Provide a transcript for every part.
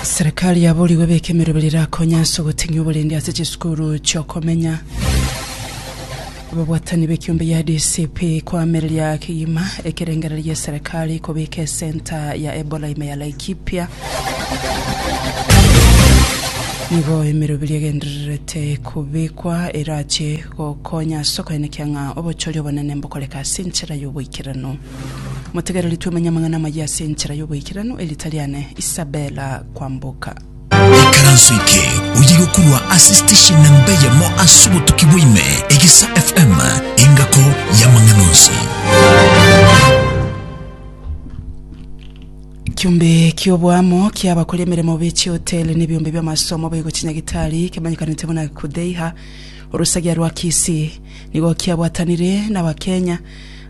Serikali yaborigwe beka emerobera erakonye ase ogoteng'ia oborendi ase chisukuru chi'okomenya. Ababwatani b'ekiombe ya DCP koamereria kegima ekerengererio gia serikali kobeka esenta ya Ebola ime ya Laikipia. Nigo emeroberi egendererete kobekwa erache gokonya ase okoenekia ng'a obochori obonene mbokoreka ase enchera y'oboikeranu. Motegereri twemenye amang'ana amayia ase enchera y'oboikeranu, erita riane Isabella Kwamboka. Ikaranso eke oye gokurwa ase station namba eyemo ase obotuki bwaime Egesa FM engako y'amang'ana onsi. Ekiombe ki'oboamo kia abakori emeremo be chihoteli na ebiombe bi'amasomo baigochia Nyagitari kemanyekanete buna Kudheiha, orosagia rwa Kisii, nigo kiabwatanire n'Abakenya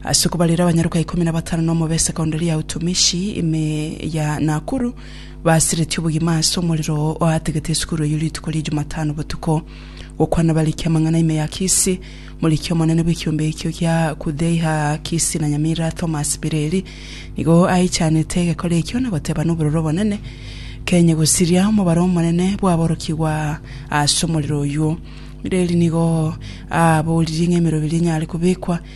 Ase okobarera abanyaroka ikomi na batano na omobe Sekondari ya Utumishi, ime ya Nakuru, basiretie obogima ase omorero oategete esukuru eyio rituko ria Jumatano botuko. Gokwana bariki amang'ana ime ya Kisii, moriki omonene bw'ekiombe ekio gia Kudheiha Kisii na Nyamira Thomas Bireri nigo aichanete egekora ekio na goteba nobororo obonene Kenya gosiria omobaro omonene bw'aborokigwa ase omorero oyio. Bireri nigo aaboririe ng'a emeroberi enyare kobekwa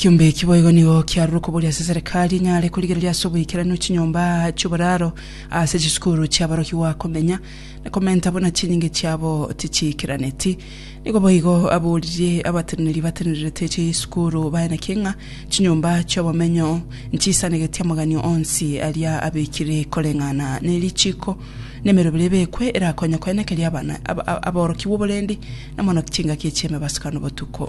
Ekiombe eki boigo nigo kiarure okoboria ase Serikali enyare korigereria ase oboikeranu chinyomba chi'oboraro ase chisukuru chi'aborokigwa komenya na komenta buna chinyinga chiabo tichiikeraneti. Nigo boigo aboririe abateneneri batenererete chisukuru baye naki ng'a chinyomba chi'obomenyo nchisanegeti amagani onsi aria abekire koreng'ana ne richiko na emerobera ebekwe erakonye koenekeria abana aborokigwa oborendi na mono chingaki chi'emebasukano botuko.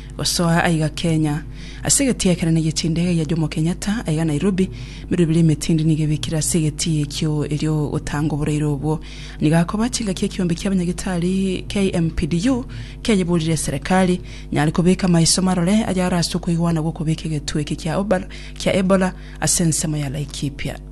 Gosoa aiga Kenya, ase egetii ekenene gie chindege gia Jomo Kenyatta aiga Nairobi, merwe bire emetindi nigo ebikire ase egetii ekio erio gotanga oboraire obwo. Nigo akoba chingaki ekiombe kia abanyagitari KMPDU kiayeborire eserekari nyare kobeka amaiso marore ayare ase okoigwana gw'okobeka egetwe eke kia Ebola ase ensemo ya Laikipia.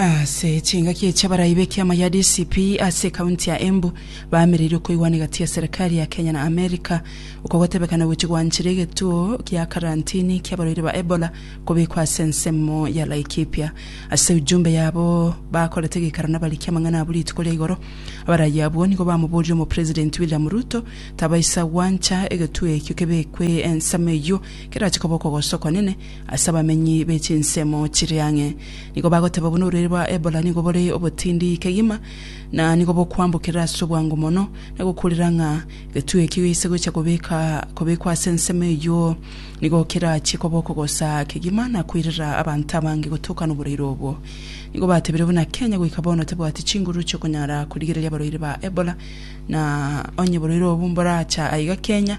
Ase chingaki echi abarai b'ekiama gia DCP ase ekaunti ya Embu baameririe okoigwana egati ya serikari ya Kenya na Amerika oko gotebekana gochia gwanchera egetuo gia karantini ki'abarwaire ba Ebola kobekwa ase ensemo ya Laikipia. Ase ujumbe yabo bakorete geikaro nabariki amang'ana abwo rituko ria igoro, abarai abwo nigo bamoborire Omopresidenti William Ruto tabaisa gwancha egetuo ekio kebekwe ensemo eyio kerachie koba okogosa okwanene Ase abamenyi be chinsemo chire ang'e nigo bagoteba buna orureri rwa Ebola nigo bore obotindi kegima, na nigo bokwambokerera ase obwango mono, na gokurera ng'a egetugi ekio geise gocha kobeka kobekwa ase ensemo eyio nigo kerachie koba okogosa kegima na koirera abanto abange gotokana oboraire obwo. Nigo batebire buna Kenya goika bono tebwati chinguru chiokonyara korigereria abarwaire ba Ebola, na onye oborwaire obo mboracha aiga Kenya,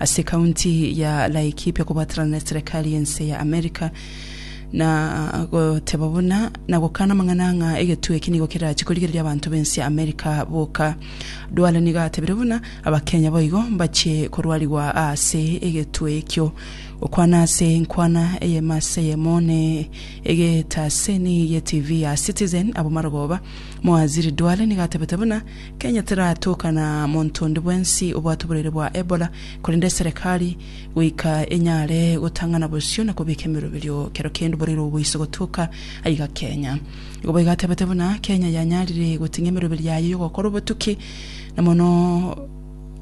Ase county ya Laikipia kobaterana na eserekari y'ense ya America na goteba buna na gokana amang'ana ng'a egetugi eki nigo kerachie korigereria abanto b'ense ya America boka. Duale nigo atebire buna Abakenya boigo mbachie korwarigwa ase egetue ekio. Gokwana ase enkwana eyemo ase eyemo ne egetaseni ye TV ya Citizen Abomar Goba, Mowaziri Duale nigo atebete buna Kenya teratoka na monto onde bwensi obwate oborwaire bwa Ebola, korende eserekari goika enyare gotang'ana bosio na kobeka emeroberio kero kende oborwaire obwo boise gotoka aiga Kenya. Igo boigo atebete buna Kenya yanyarire goting'ia emeroberio yaye y'ogokora obotuki na mono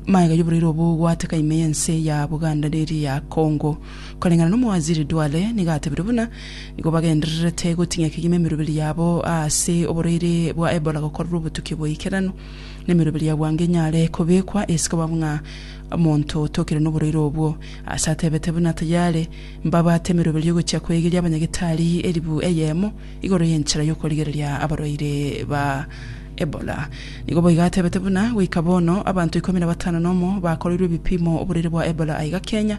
magega y'oborwaire obwo gwaateka ime y'ense ya Buganda na eria ya Congo. Koreng'ana n'Omowaziri Duale, nigo atebirie buna nigo bagendererete gotinyia kegima emeroberi yabo ase oborwaire bwa Ebola gokorerwa obotuki bw'oikeranu, na emeroberi ya bwango enyare kobekwa ase koba ng'a omonto otokire noborwaire obwo. Ase atebete buna tayare mbabwate emeroberi y'ogochia koegeria abanyagetari eribu eyemo igoro y'enchera y'okorigereria abarwaire ba Ebola. Nigo boigo atebete buna goika bono abanto ikomi na batano nomo bakoreirwe ebipimo oborwaire bwa Ebola aiga Kenya,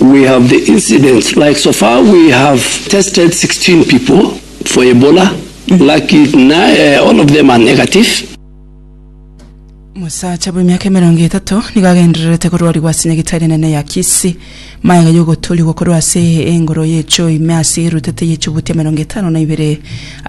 We have the incidents like so far we have tested 16 people for Ebola laki na all of them are negative. Omosacha bw'emiaka emerongo etato nigo agendererete korwarigwa ase nyagetari enene ya Kisii. Magega y'ogotoorigwa korwa ase engoro y'echoo ime ase erutete y'echibuti emerongo etano na ibere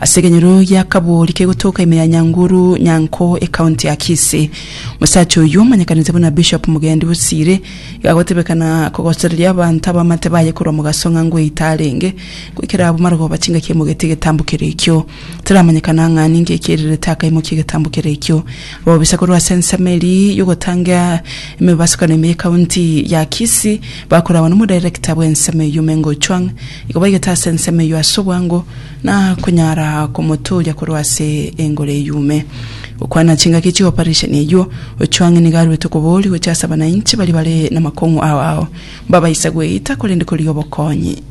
ase ekenyoro gia Kabori kegotoka ime ya Nyanguru Nyanko ekaunti ya Kisii. Omosacha oyio omanyekanete buna Bishop Mugendi Bosire Igagotebekana kogosoreria abanto abamate baye korwa mogaso ng'a ngweita arenge, goikera abwo marogoba chingaki emogete egetambo kere ekio. Taramanyekana ng'a ninki ekierirete akaimokia egetambo kere ekio. Ababisa korwa ase ensemo eria y'ogotanga emebasukano ime y'ekaunti ya Kisii bakoragwa nomodirector bw'ensemo eyio Meng Ochuang igo baigete ase ensemo eyio ase obwango na konyara komoturia korwa ase engoro eyume. Gokwana chingaki chi'oparesheni eyio, Ojwang nigo aruete okoboria gochia ase abanainche baria bare namakong'u ao ao, mbabaisa gweita korende korigia obokonyi.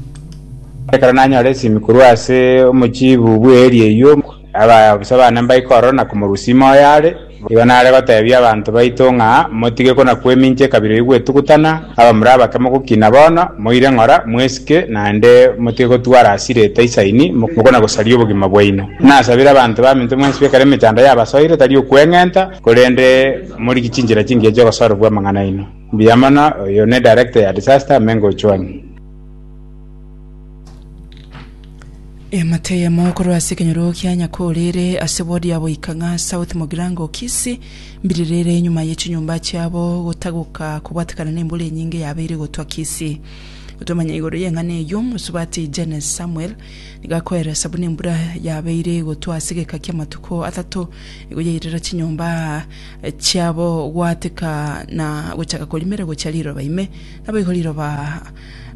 Ekero nanyora esimi korwa ase omochiibu bw'eeri eyio, abaabisa baane mbaika ororo na komorusia ime oyo are. Igo nare goteebia abanto baito ng'a motige kona-kwemincha ekabira eyio gwetugutana, abamura abake mogokina bono, moire ng'ora, mwesike, naende motige gotwara ase rieta isaini, mokona-gosaria obogima bwaino. Nasabire abanto baminto mwensi bekare emechando yabasoire, tari okweng'enta, korende morigie chinchera chingiya chi'ogosorobua amang'ana aino. Mbuya mono, oyo ne Director ya Disaster, Mengo Ochwani. Eamate eyemo korwa ase ekenyoro kia Nyakorere ase ward ya Boikang'a South Mogirango Kisii mbiririre enyuma ye chinyomba chiabo gotagoka kobwatekana na embura enyinge yabeire gotwa Kisii. Gotomanya igoro y'eng'ana eyio mosubati Jennes Samuel nigo akoeresa buna embura yabeire gotwa ase egeka kia amatuko atato nigo yairera chinyomba chiabo gwateka na gochaka korimera gochia riroba ime naboigo riroba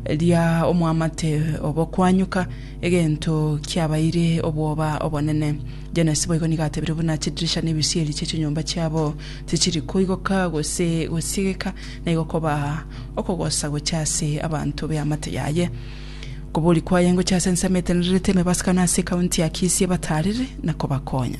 ria omwamate obokwanyuka, egento kiabaire obwoba obonene. Janesi boigo nigo atebire buna chidirisha na ebisieri chie chinyomba chiabo tichiri koigoka gose gosiegeka, na igo koba okogosa gochia ase abanto b'eamate yaye. Okobori kwaye ngochia ase ensemo etenenerete emebasika na ase ekaunti ya Kisii ebataarere na kobakonya.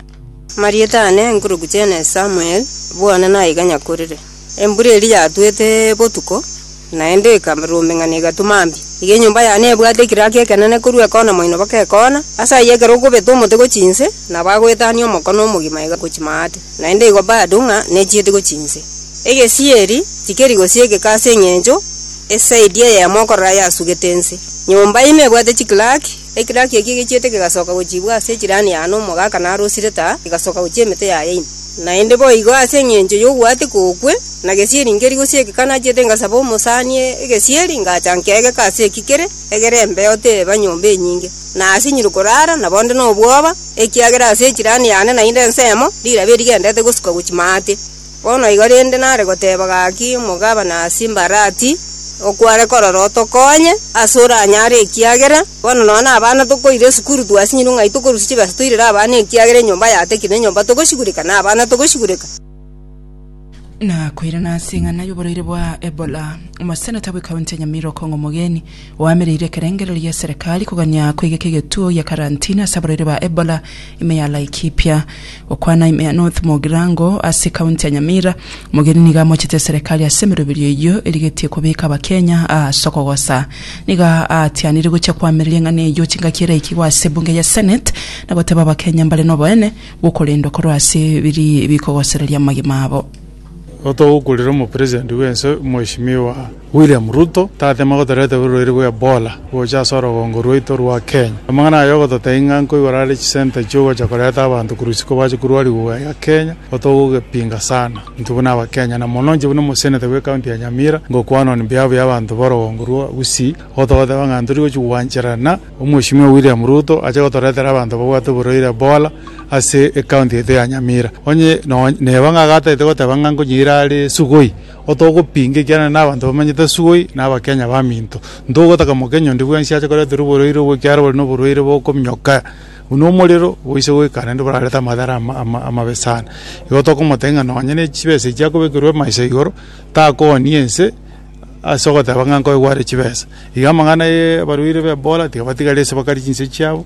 Marieta aane enkuruku chiane Samuel, bwana naiga nyakorire. Embura eria yatwete botuko, naende ekarurumeng'ana egatuma mbi. Iga enyomba yane ebwate ekiraki ekenene korwa ekona moino baka ekona, ase ayio ekero okobeta omote gochia inse, nabo agoetania omokone omogima iga gochia maate, naende igo bado ng'a nechieti gochia inse. Egesieri tikeri gosiegeka ase engencho esaidi eyemo okorora yasugete inse. Nyomba ime ebwate chikiraki. Ekiraki eke gechiete kegasoka gochiibwa ase echirani ya Anomu ogaaka na Arosireta, egasoka gochia emete ya Yaini. Naende boigo ase engencho y'ogwaeteka okwe, na gesieri nkeri gose egeka nachiete ngasaba omosani egesieri, ngacha nkegeka ase eki kere egere embeo teba nyomba enyinge, na asinyire koraara, na bonde nobwoba, ekiagera ase echirani yane naende ensemo, rilabe rigendete gosuka gochia maate. Bono igo rende nare goteba gaki omogabana ase embarati, okware korora otokonye ase oranyare ekiagera bono nonya na abana tokoira esukuru twasinyirwe ng'ai tokorusia chibesa toirere abana ekiagera enyomba yatakire na enyomba togosigureka na abana togosigureka. Na koirana ase eng'ana y'oboraire bwa Ebola, omoseneta bw'ekaunti ya Nyamira okong'a omogeni. Oamereire ekerengererio gia Serikali kogania koigeka egetuo gia karantini ase abarwaire ba Ebola ime ya Laikipia. Gokwana ime ya North Mugirango ase County ya Nyamira, Mogeni nigo amochete Serikali ase emeroberio eyio erigetie kobeka Abakenya ase okogosa. Nigo aatianire gochia koamereria eng'ana eyio chingaki eraikigwe ase Ebunge ya Senate na goteba Abakenya mbare noboene bwokorendwa korwa ase biria bikogosereria amagima abo. Otogokurera omopresident bw'ense Mweshimiwa William Ruto tatema gotoreta oborwaire bwa Ebola gocha ase orogongo rwaito rwa Kenya. Amang'ana aya ogototebia ng'a nkoigora are chisenta chiogocha koreta abanto korwa isiko bache korwariwa gaya Kenya otogogepinga sana intwe buna abakenya na mono inche buna omoseneta bwe county ya Nyamira ngokwana on behalf ya abanto borogongo rwa Gusii gotogoteba ng'a ntori gochi gwancherana Omweshimiwa William Ruto ache gotoretera abanto babwate oborwaire Ebola ase ecounty yaito ya Nyamira. Onye nonye neba ng'a agatagete goteba ng'a nkonyiira are Sugoi, otogopinga ekiagera nabanto bamanyete Sugoi na abakenya baminto. Ntogotaka mokenyi onde bwensi ache koreterwa oborwaire obwo ekiagera bore noborwaire bokominyoka buna omorero boise goika naende borarete amadhara ama amabe sana. Igo tokomotebia ng'a nonye nechibesa echi akobekerwa emaiso igoro takooni ense. ase ogoteba ng'a nkoigware chibesa. Iga amang'ana y'abarwaire b'Ebola tigabatigaria ase bakari chinse chiabo.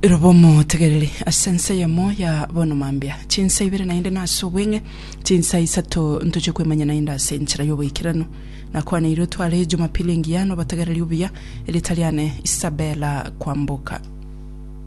Roba omotegereri ase ense eyemo ya bono mambia, chinsa ibere naende nase obweng'e, chinsa isato ntochie kwemanya naende ase enchera y'oboikeranu. Nakwaneire otware Jumapili engiya nobotegereri obuya, erieta riane Isabella Kwamboka.